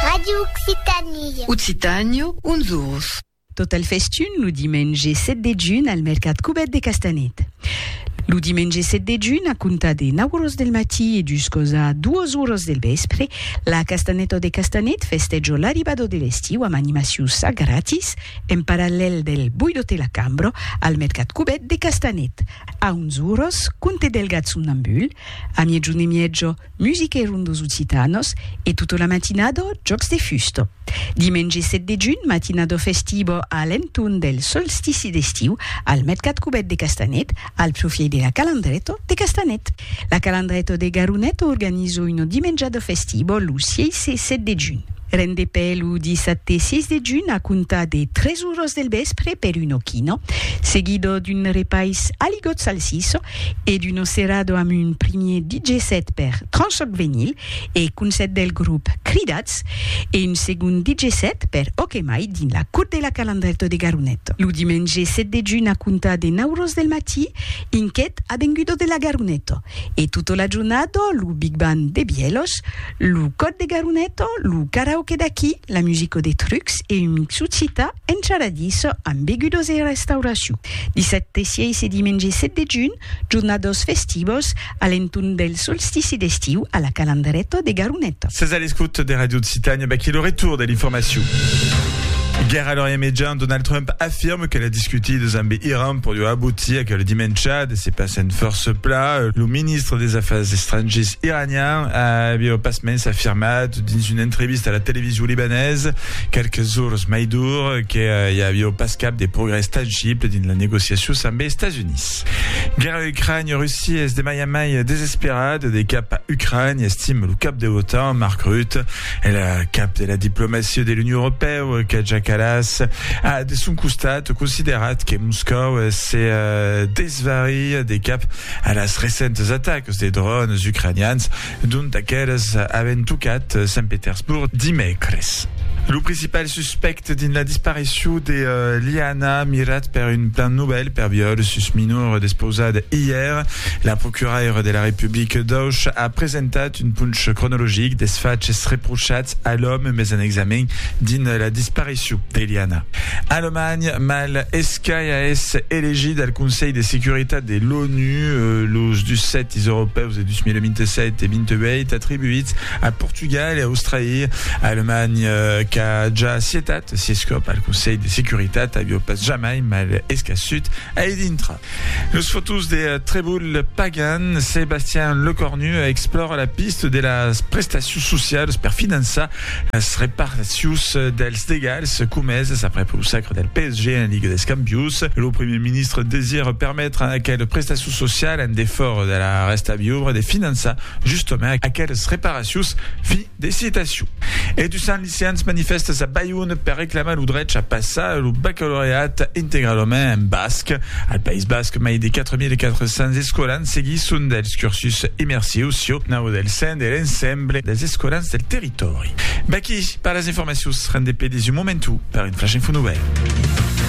Radio Occitanie. Occitània, uns ors. Tot al festun lo dimenge 7 de junh al mercat Cubèt de Castanet. Lo dimenge 7 de junh, a comptar de 9 oras del matí e juscos a 2 oras del vèspre, la Castanèta de Castanet festèja l'arribada de l'estiu amb animacions a gratis en parallèl del Boidote la Cambra al mercat Cubèt de Castanet. A 11 oras, compte del gat somnambul, a miègjun e mièja, Musique Rondos Occitanos e tota la matinada Jòcs de Fusta. Dimenge 7 de junh, matinada festiva a l'entorn del solstici d'estiu al Mercat Cubèt de Castanet, al profièit de la Calandreta de Castanet. La Calandreta de Garoneta organiza una dimenjada festiva lo 6 e 7 de junh. Rendepè lo dissabte 6 de junh a comptar de 3 oras del vèspre per una quina, seguida d'un repais aligot salsissa e d'Uno Cerrado amb un primier DJ set per Tranchoc Venyl e Concèrt del grop Cridats e un segond DJ set per Ok Mai dins la Cour de la Calandrèto de Garonet lo dimenge 7 de junh a comptar de 9 ros del matí inquet Avengudo de la Garoneto e tota la jornada lo Big Band de Bièlhos Lo còd de Garuneto, lo karaoke d'aquí, la musico de Trucs e un mixu cita encharadís amb begudos e restauracion. Dissabte 6 e dimenge 7 de junh, jornados festivos a l'entorn del solstici d'estiu a la Calandreto de Garuneto. Sètz a l'escòuta de Radio Occitània, vaquí lo retorn de l'informacion. Guèrra a l'Orient Mejan, Donald Trump afirme que las discutidas amb Iran pòdion aboutir aquel dimèncha de se passar en fòrça pla. Lo ministre des Afars Estrangiers iranian, Iranian aviá au pasmens afirmat dins una entrevista a la television libanesa qualques jorns mai dur que i aviá pas cap de progrès tangible dins las negociacions amb es Estats Units. Guèrra Ucrània-Russia es de mai en mai desesperat de cap a Ucrània, estima lo cap de l'OTAN, Mark Rutte. El cap de la diplomacia de l'Union Europèu, Kaja Kallas, a de son costat considerat que Moscòu se desvari de cap a las recentes atacs de dròns ucranians dont aqueles avèn tocat Sant Petersborg dimècres. Lo principal suspècte dins la disparicion de Liana, mirat per un plan novèl per viòl sus minor despausat ièr, la procuraira de la Republica d'Auch a presentat un ponch cronologic des faches reprochats a l'òme mes en examen dins la disparicion de Liana. Alemanha, mal Qu'a ès elegit al Conselh de Securitat de l'ONU los dus sètis europèus de 2027 e 28 atribuïts a Portugal e a Australia. Alemanha, qu'a ja acietat sies còp al Conselh de Securitat, aviá pas jamai mal escaçut a i dintra. Los fotós de Trèvol Pagan, Sebastian Lecornu explòra la pista de las prestacions socialas per finançar Las reparacions dels degalhs comeses aprèp lo sacre del PSG en Liga des Campions. Lo primièr ministre desira permetre a aquel prestacion social en defòra de la rèsta viubra de finançar justament aqueles reparacions. Fin de citacion. E dus cents liceants manifèstes a Bayonne per reclamar lo drech a passar lo bacalaureat integralament en basc. Al País Basc, mai de 4.400 escolans seguisson dels cursus immersius sieu nau del CEND e l'ENSEM. l'ensemble des escolans del territòri. Baquí pas las informacions, rendez pedis un momentu per un Flash Info Novèl.